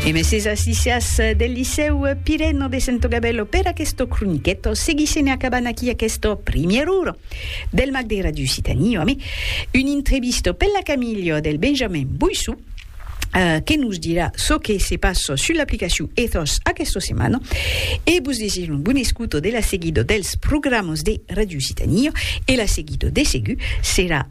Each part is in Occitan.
E meses assisias del Licèu Pireno de Santogabello per aquesto croniqueto, seguissem e acabant aquí aquesto primièr uro del Mag de Radio Occitanie ame un intrevisto per la Camilio del Benjamin Boissou, Eh, que nos dirà çò que se passa sus l'aplicacion Ethos aquesta setmana. E vos desir un bon escuto de la seguida dels programas de Radio Occitanie e la seguida de segur serà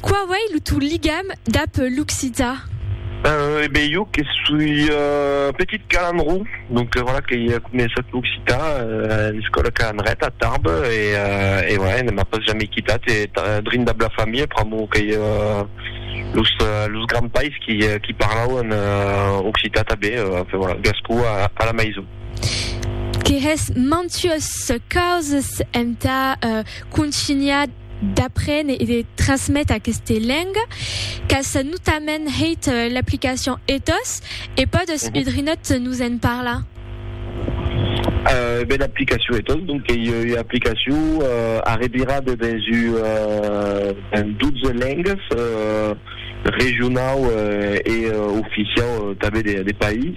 Qua uei lo tò ligam dab l'occitan? Eh ben, jo que soi petit calandró, donc voilà que i a començat l'occitan a l'escòla calandreta a Tarbes e voilà, ne m'a pas jamais quitat e drin dab la familha pr'amor qu'ei los grands pais qui parlauen occitan tanben, enfin voilà, gascó a la maison. Que hè's mantuas causas entà contunhar d'aprene e de trasmete aqueste lenga qu'as notament hèit l'aplicacion ethos e pòdes udrinòt nos en parlar? Ben l'aplicacion ethos donc qu'ei ua aplicacion arrevirada dens un 12 lengas regionau e oficiau tanben de país.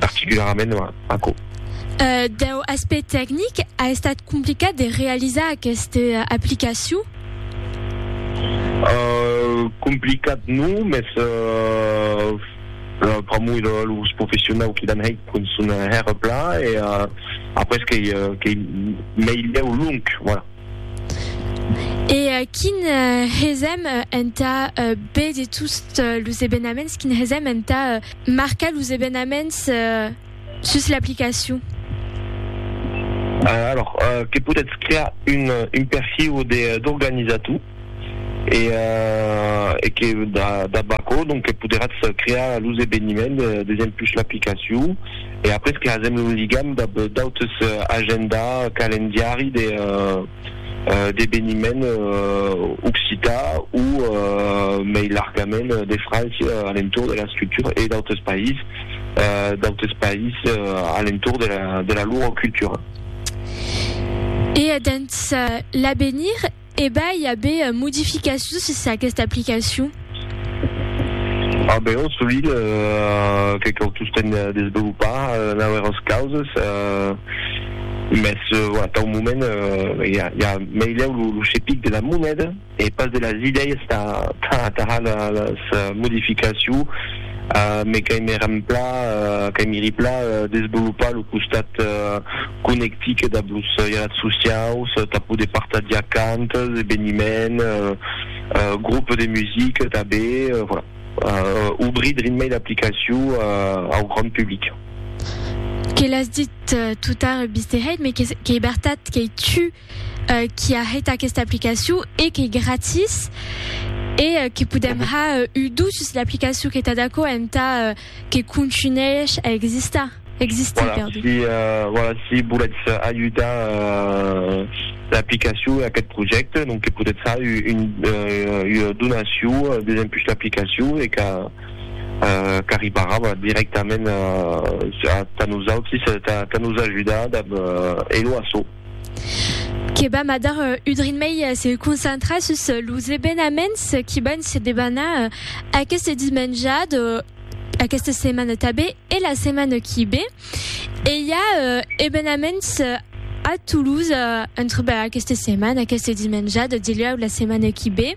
particularament aquò. Deu aspect tecnic, a estat complicat de realizar aquesta aplicacion? Complicat non, mès pr'amor de los professionau qui l'an hèit pon son hèr plan e après qu'ei meilhèu long, voilà. E quin hesèm entà be de tots los ebenaments, quin hesèm entà. Marcar los evenaments sus l'aplicacion. Alòrs que podètz crear un perfil d'organizator e que dab aquò que poderatz crear los eveniments desem pus l'aplicacion e après que hasèm lo ligam dab d'autres agenda, calendiari de. d'eveniment occitan o mei largament de França a l'entorn de la scriptura e d'autres païses, d'autres païses a l'entorn de la lor cultura. E dens l'avenir, e ben, i a ben modificacions sus aquesta aplicacion? A Beòrn Solilh, que cau tostemp desvolopar nauèras causes, mès tau moment i a meilhau lo chepic de la moneda e pas de las idèias tà atajar las modificaciu, me qu'aimi remplà, qu'aimi riplà desvolopar lo costat conectic dab los jalat sociaus tà poder partagiar cantas, eveniments, Groupe de musique tanben, voilà. Obrir drin mei l'aplicacion au grand public. Que l'as dit tout tard Bisteheit, mais qu'ei bertat qu'ei tu qui a hèit aquesta aplicacion e qu'ei gratis e que podem har udus sus l'aplicacion. Qu'ei tad aquò entà Que contunhèish a existar, existir, perdon. Si, voilà, si volètz ajudar l'aplicacion e aquest projècte, donc que podètz far ua donacion desempuish l'aplicacion e qu'a qu'arribarà, voilà, dirèctament tà nosautris, tà nos ajudar dab Hello Asso. que vam a dar un drin mei se concentrar sus los evenaments qui van se debanar aqueste dimenjat aquesta setmana tabé e la setmana qui bé e i a evenaments a Toulouse entre aquesta setmana aquesta dimenjat dilhèu la setmana qui bé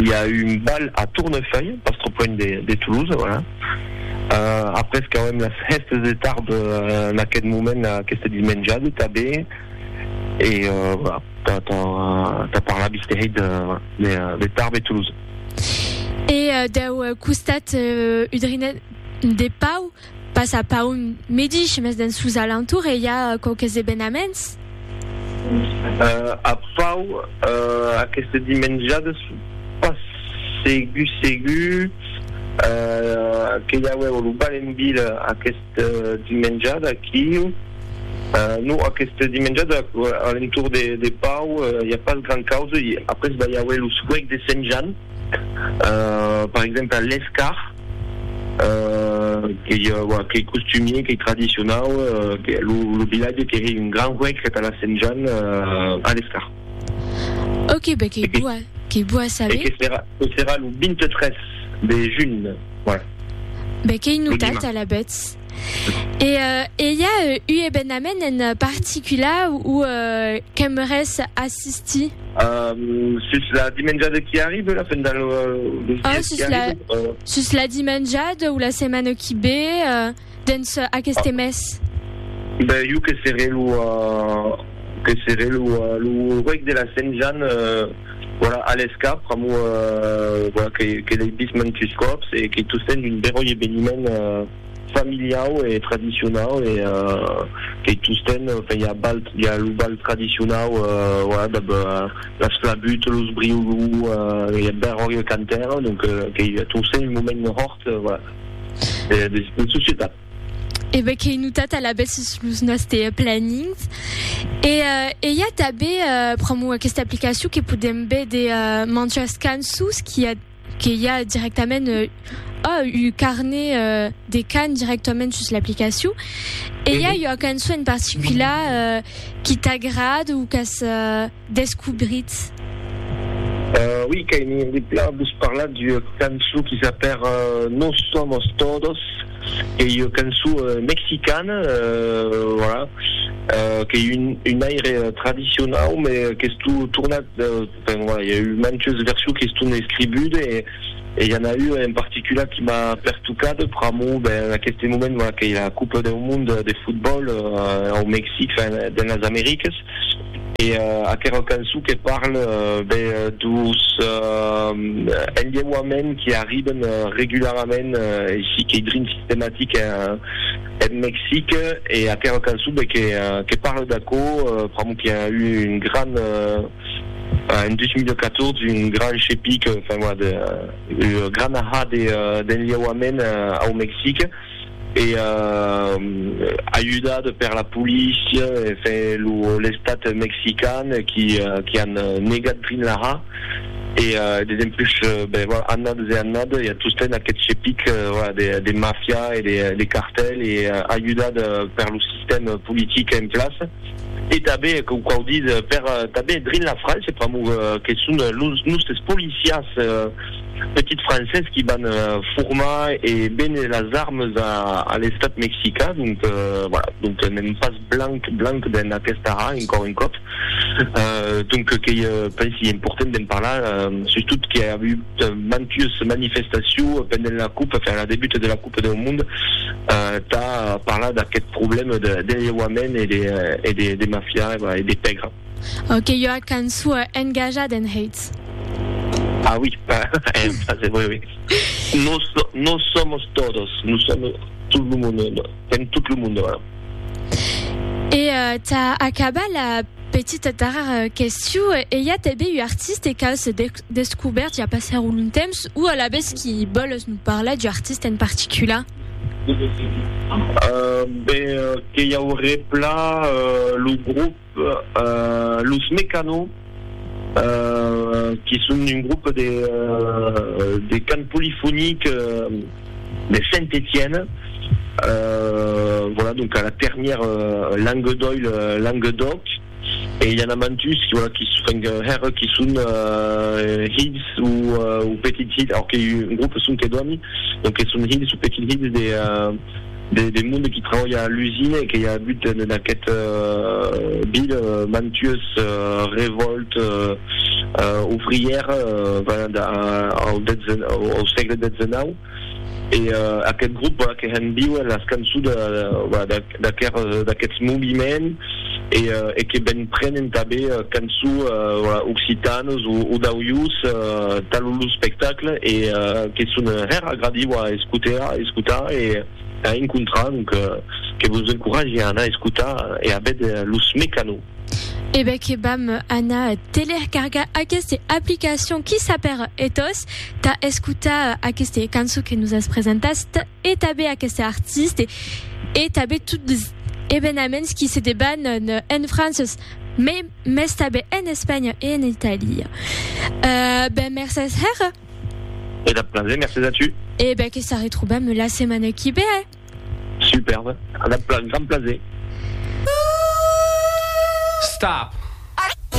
i a un bal a Tournefeuille, pas trop loin de Toulouse, voilà. Uh, après qu'auem las hèstes de tarb en aquest moment, aquesta dismenjada tabé, e voilà, ta, ta, ta parla bisterei de, de, de Tarbes e Toulouse. E dau costat udrinenc de Pau, Pas a Paun medish, mes dens sos alentours e i a quauques evenaments. A Pau, aqueste dimenjades pas segur segur que i auèu lo bal en vila aqueste dimenjade aquiu. Non, aqueste dimenjade a l'entorn de Pau i a pas grand causa. Après va i auer lo suec de Sent Jan. per exemple l'escar qu'ei qu'ei costumier qu'ei tradicionau lo vilatge que hei un gran huec que tà la sent Jan a l'escar ok be qu'ei boa qu'ei boa a saber que serà que serà lo 23 de junh voilà be qu'ei notat alavetz. E e i a u ebenament en particular ou qu'aimeres assistir? Sus la dimenjada qui arribe la fin del ah sus la sus la dimenjada ou la setmana qui be dens aqueste mes? Ben jo que seré lo que seré lo reg de la Sent Jan Voilà, alèth cap, pr'amor voilà que l'ei vist mantus còps e que tu sens un beròi eveniment familiau e tradicionau e que tostemp enfin i a balh i a lo balh tradicionau voilà dab las flabuts, los briolou, i a beròi e cantèr donc que i a tostemp un moment hòrt voilà de societat. E be qu'ei notat alavetz sus los nòste planings. E e i a tanbe pr'amor aquesta aplicacion que podem be de manjas cançons qui a que i a directament oh u carnet de can directament sus l'aplicacion. E i a ua cançon en particular qui t'agrad o qu'as descobritz? Ui, qu'ai envie de plan vos parlar d'ua cançon qui s'apèra No somos todos, qu'ei ua cançon mexicana, voilà, qu'ei un aire tradicionau, me qu'estó tornat, enfin voilà, i a eu mantes versions qui estón escribudes e i a n'a ua en particular qui m'a pertucat pr'amor, ben, en aqueste moment, voilà, qu'ei la Copa deu Monde de Fotbòl au Mexic, enfin, dens las Americas. E aquera cançon que parle ben dus enlheuaments qui arriben regularament e si qu'ei drin sistematic en Mexic e aquera cançon ben que parle d'aquò pr'amor qui a eu un gran en 2014 un gran chepic enfin voilà de grana ha d'enlheuaments au Mexic. e ajudat per la polícia e l'estat mexican qui an negat Greenlaha e dempuish annadas e annadas i a tostemps aqueth chepic de mafia e de cartèl e ajudat per lo sistèm politic en plaça e tanben quau quau ditz per tanben drin la França pr'amor que son los nòstes policiás petits Frances qui van formar e véner las armes a l'Estat Mexica, donc voilà, donc n'èm pas blanc blanc dens aquesta ra encòr un còp, donc qu'ei pensi important d'en parlar, sustot qu'i a avut mantues manifestacions pendent la coupe, enfin la debuta de la coupe deu mond, tà parlar d'aqueth problème de lheuament e de mafia e de pègra. Au que ua cançua engajat en Hates. Ah oui, en français, oui, oui. Nos, nos somos todos, nous sommes tout le monde, en tout le monde. E uh, ta acaba la petita tarar question, e i a tanben un artiste qu'a se descobert i a passar un long temps, o alabes qui boles nous parlar d'un artiste en particular? Uh, ben, que i auré plan uh, lo groupe. Los Mecano, que son un grop de cant polifonic de Saint-Etienne, vòla, donc a la ternièr Languedoil, Languedoc, e i a na mantus, vòla, qui enfin hèr qui son hilhs ou petits hilhs, aor que un grop son que dòni, donc que son hilhs ou petits hilhs de de monde qui trabalha a l'usina e que i a agut en aquest ville mantues revòltes ouvrières venent au sègle xix e aquest grop que hèn viuer las cançons d'aquests moviments e que ben prenen tanben canço occitanes o d'auius talo lo spectacle e que son hèr agradiu a escotar e a encontrar donc que vos encourage a anar escotar e a vède los Mecano. E ben que vam anar telercargar aqueste aplicacion qui s'apèr Ethos tà escotar aqueste canço que nos as presentat e tanben aqueste artiste e tanben tot evenaments qui se debanan en Franças, me mès tanben en Espanha e en Italia. E ben, mercés hèra. E dab plaser, mercés a tu. E ben, que s'arretrobam la setmana qui ve, eh? Superbe, dab grand plaser. Stop!